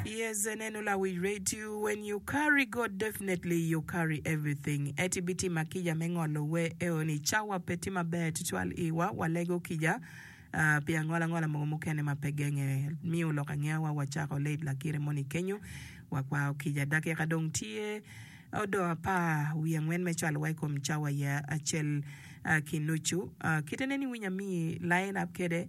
Yes, and then all I will rate you when you carry God definitely you carry everything. Et ibitima kica me ngolo we eo ni cawa pe tye maber tutwal iwa walego kica ah, pi angola angola mogo mukene ma pe genge. Miyo lok angewa wacako late lakire moni kenyo. Wakwao kica dakika dong tye odoo apar wiye angwen me cwalo wa ikom cawa ya acel ah, ki nucu. Ah, kite nen iwinyo amiyi lain up kede.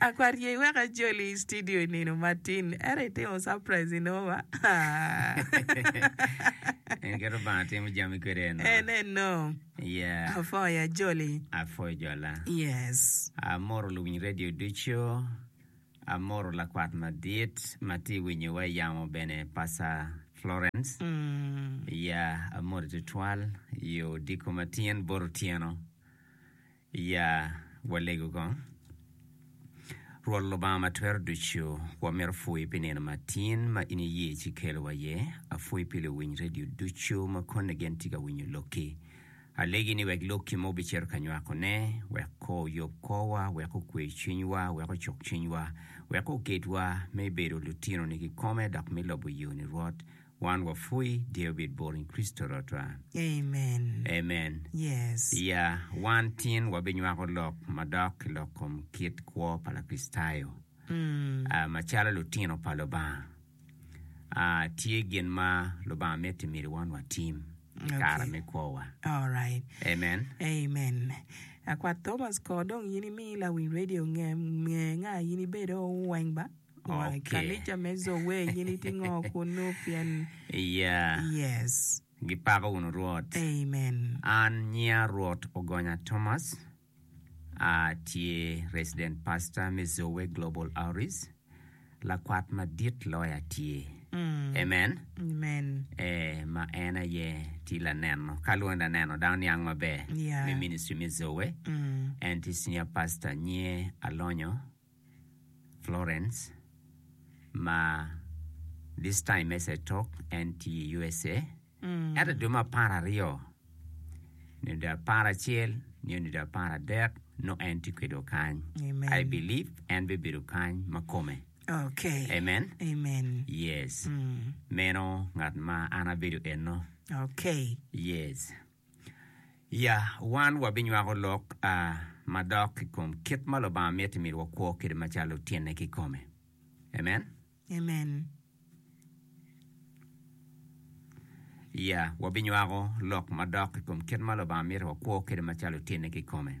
Akwar ye iwek ajoli i studio i nino matin ento itimo surprise i noma. En keto banga timo jami kwede eno. En eno. Yeah. Afoya joli. Afoyo jola. Yes. Amoro luwiny radio ducu. Amoro lakwat madit ma tye winyowa i yamo bene Pasa Florence. Mm. Yeah, amori tutwal yo diko ma tyen bot otyeno. Ya walego kong. Rwot Lubanga ma Twero Ducu, wamito pwoyi pi nino ma tin ma in iye ci ikelo wa iye. Apwoyi pi luwiny redio ducu ma konne gen tye ka winyo lokki. Alegi ni wek lokki ma wubicito ka nywako ne, wek ko oyub korwa, wek okwe cwiny wa, wek ocuk cwiny wa, wek oket wa me bedo lutino ni kikome dok me lobo yoni Rwot, Wan wapwoyi dear obed bor in Christo rotwa. Amen. Amen. Yes. Iya, wan tin wabinywako lok madok ki lok kom kit kwo pa Lakricitayo. Ah, macalo lutino pa Lubanga, ah, tye gin ma Lubanga miti myero wan watim i kare Okay. me kwowa. Alright. Amen. Amen. Akwat Thomas kor dong in imi lawiny radio nge nge nga in ibedo weng ba. Gipako wunu Rwot. An nyiya Rwot Ogonya Thomas, atye Resident Pastor me Zoe Global Outreach, lakwat madit loyo atye. Amen. Ee, ma en aye tye laneno, ka lwonge laneno dano niang maber, me ministry me Zoe. En tye Senior Pastor, nyiye alonyo Florence ma this time as I talk en tye i USA ento dwe me apar aryo nyo dwe apar acel nyo dwe apar adek nongo en tye kwedwa kany Amen. I believe en bibedo kany ma kome Okay. Amen. Amen. yes meno ngat ma an abedo eno Okay. yes Ya, wan wabinywako lok madok i kom kit ma Lubanga miti myero wakwo kwede macalo tyene kikome. Amen? Amen. Ya, wabinywako lok madok i kom kit ma Lubanga miti wakwo kwede macalo tyene kikome.